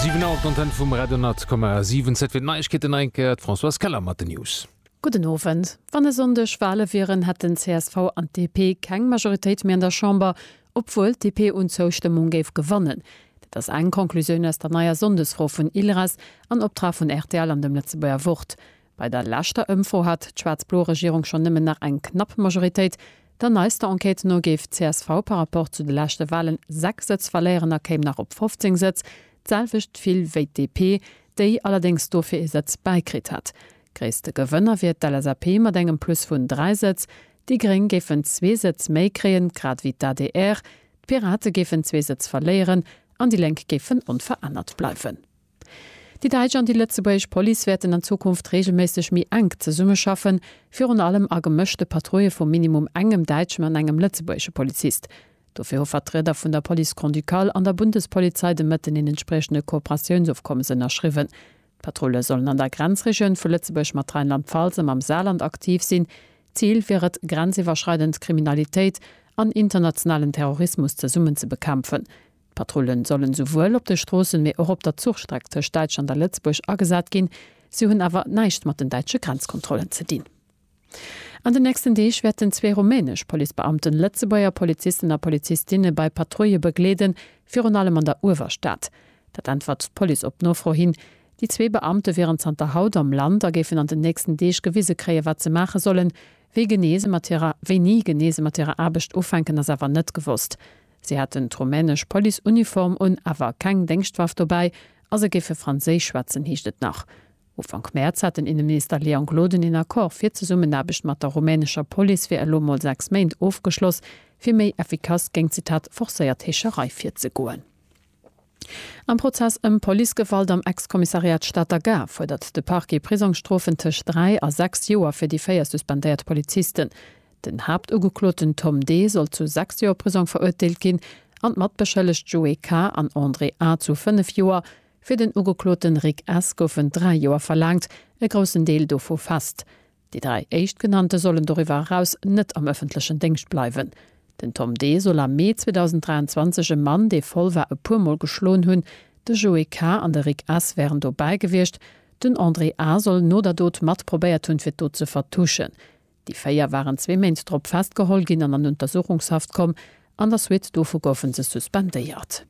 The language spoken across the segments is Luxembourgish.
Siwen Auer op d'Antenne vum Radio 10,7. Zäit fir d'Neiegkeeten, hei eng Kéier d'Françoise Keller mat den News. Gudden Owend. Wann e Sonndeg Wale wieren, hätten csv an d'DP keng Majoritéit méi an der Chamber, obwuel d'DP un Zoustëmmung géif gewannen. Dat ass eng Conclusioun aus der neier Sonndesfro vun ILRAS an Optrag vun rtl an dem Lëtzebuerger Wort. Bei der leschter Ëmfro hat d'schwaarz-blo Regierung schonn nëmmen nach eng knapp Majoritéit. Der neister Enquête no géif d'CSV par Rapport zu de leschte Walen 6 Sëtz verléieren a kéim nach op 15 Sëtz, d'selwecht vill wéi d'DP, déi allerdéngs dofir ee Sëtz bäikritt hätt. Gréisste Gewënner wier d'LSAP mat engem Plus vun 3 Sëtz. Déi Gréng géifen zwee Sëtz méi kréien, grad wéi d'ADR. D'Pirate géifen zwee Sëtz verléieren an déi Lénk géifen onverännert bleiwen. Déi däitsch an déi lëtzebuergesch Police wäerten an Zukunft reegelméisseg méi enk zesummeschaffen, virun allem a gemëschte Patrouille vu minimum engem däitschen an engem lëtzebuergesche Polizist. Dofir hu Vertrieder vun der Police Grand-Ducale an der Bundespolizei de Mëtten een entspriechende Kooperatiounsofkommes ënnerschriwwen. D'Patrulle sollen an der Grenzregioun vu Lëtzebuerg mat Rheinland-Pfalz a mam Saarland aktiv sinn. Zil wier et, grenziwwerschreidend Kriminalitéit an internationalen Terrorismus zesummen ze bekämpfen. D'Patrullen sollen souwuel op de Stroossen, mee och op der Zuchstreck tëscht Däitschland a Lëtzebuerg agesat ginn. Si hunn awer näischt mat den däitsche Grenzkontrollen ze dinn. An den nächsten Deeg wäerten zwee rumänesch Policebeamten Lëtzebuerger Polizisten a Polizistinne bei Patrouille begleeden, virun allem an der Uewerstad. Dat äntwert d'Police op Nofro hin. Déi zwee Beamte wieren zanter haut am Land a géifen an den nächsten Deeg gewise kréien, wat se maache sollen. Wéi genee se mat hirer Wéini genee se mat hirer Aarbecht ufänken, ass awer net gewosst. Si haten d'rumänesch Police-Uniform un, awer keng Déngschtwaff dobäi a se géife Franséisch schwätzen, heescht et nach. Ufank Mäerz hat den Inneminister Léon Gloden een Accord fir d'Zesummenaarbecht mat der rumänescher Police fir elo mol sechs Méint ofgeschloss, fir méi effikass géingt, Zitat, forcéiert Heescherei virzegoen. Am Prozess ëm Policegewalt am Ex-Kommissariat Stater Gare fuerdert de Parquet Prisongsstrofen tëscht dräi a sechs Joer fir déi véier suspendéiert Polizisten. Den Haaptugekloten Tom D. soll zu sechs Joer Prisong verurteelt ginn an d'Matbeschëllegt Joé K. an André A. zu fënnef Joer. Fir den Ugekloten Rick S. goufen dräi Joer verlaangt, e groussen Deel dovu fest. Déi dräi Éischtgenannte sollen doriwwer eraus net am ëffentlechen Déngscht bleiwen. Den Tom D. soll am Mee 2023 e Mann, dee voll war, e puer Mol geschloen hunn. De Joe K. an de Rick S. wären dobäi gewiescht. Den André A. soll no der Dot mat probéiert hunn, fir d'Dot ze vertuschen. Déi véier waren zwee Méint drop festgeholl ginn an an Untersuchungshaft komm. An der Suite dovu goufe se suspendéiert.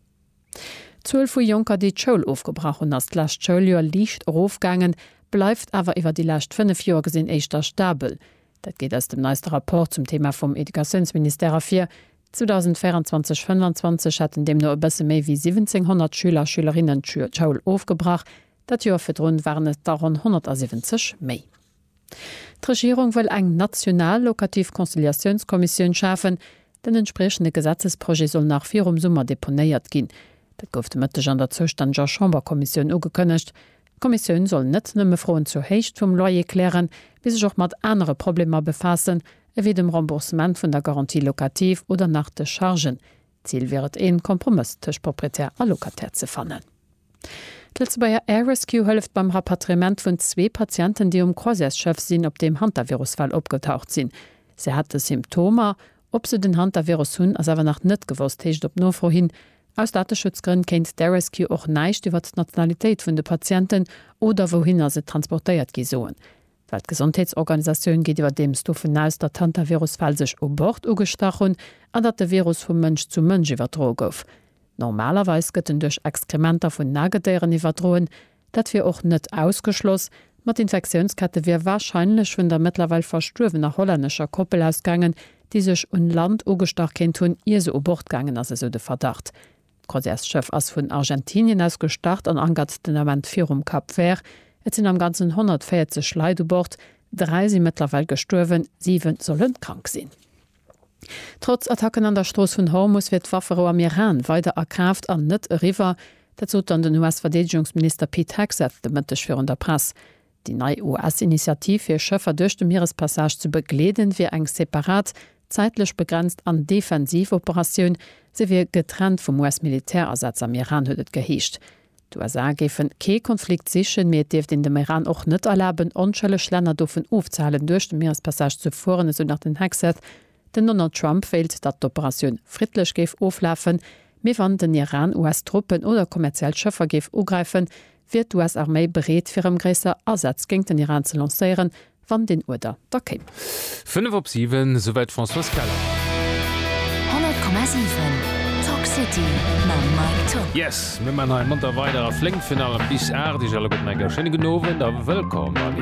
D'Zuel vu Jonker, déi d'Schoul ofgebrach hunn, ass d'lescht Schouljoer liicht erofgaangen, bleift awer iwwer déi lescht fënnef Joer gesinn éischter stabel. Dat geet aus dem neiste Rapport zum Thema vum Educatiounsministère ervir. 2024/25 hätten deemno e bësse méi wéi 1.700 Schüler a Schülerinnen d'Schoul ofgebrach, dat Joer virdrun waren et der ronn 170 méi. D'Regierung wëll eng national locativ Conciliatiounskommissioun schafen. Den entspriechende Gesetzesprojet soll nach virum Summer deponéiert ginn. Dat gouf de Mëtteg an der zoustänneger Chamberkommissioun ugekënnegt. D'Kommissioun soll net nëmme Froen zur Héicht vum Loyer klären, mee sech och mat anere Problemer befaassen, ewéi dem Remboursement vun der Garantie locative oder nach de Chargen. D'Zil wier et, een Kompromëss tëscht Proprietär a Locataire ze fannen. D'Lëtzebuerger Air Rescue hëlleft beim Rapatriement vun zwee Patienten, déi um Croisièresschëff sinn, op deem Hantavirus-Fäll opgetaucht sinn. Se hätte Symptomer. Ob se den Hantavirus hunn, ass awer nach net gewosst, heescht et op Nofro hin. Aus Dateschutzgrënn kéint d'Air Rescue och näischt iwwert d'Nationalitéit vun de Patienten oder wouhinner se transportéiert gi soen. D'Weltgesondheetsorganisatioun geet iwwerdeems dovun aus, datt d'Hantavirus-Fäll sech u Bord ugestach hunn an datt de Virus vu Mënsch zu Mënsch iwwerdroe gouf. Normalerweis gëtt en duerch Exkrementer vun Nagedéieren iwwerdroen. Dat wier och net ausgeschloss, ma d'Infektiounskette wier warscheinlech vun der mëttlerweil verstuerwener hollännescher Koppel ausgaangen, déi sech un Land ugestach kéint hunn, ier se u Bord gaangen ass, esou de Verdacht. D'Croisièresschëff ass vun Argentinien aus gestart an ankert den Ament virum Cap Vert. Et sinn am Ganzen 140 Leit u Bord, dräi si mëttlerweil gestuerwen, siwe solle krank sinn. Trotz Attacken an der Strooss vun Hormus wier d'Wafferou am Iran weider a Kraaft an net eriwwer. Dat sot dann den US-Verdeedegungsminister Pete Hegseth de Mëtteg virun der Press. Déi nei US-Initiativ fir Schëffer duerch de Mierespassage ze begleeden, wier eng separat, zäitlech begrenzt an defensiv Operatioun. Se wier getrennt vum US-Militärasätz am Iran, huet et geheescht. D'USA géifen kee Konflikt sichen, mee et dierft een dem Iran och net erlaben, onschëlleg Länner dovun ofzehalen, duerch de Mierespassage ze fueren, esou nach den Hegseth. Den Donald Trump wéilt, datt d'Operatioun friddlech géif oflafen, mee wann den Iran US-Truppen oder kommerziell Schëffer géif ugräifen, wier d'US-Arméi bereet fir erëm gréisser Asätz géint den Iran ze lancéieren, wann deen Uerder da kéim. Fënnef op siwen, esouwäit d'Françoise Keller. 100,7 Talk City mam Mike Tock. Yes, mir man hei monter weider a flénk fir nach bis aacht. Iech alleguerten eng schéine gudden Owend a wëllkomm bei mir.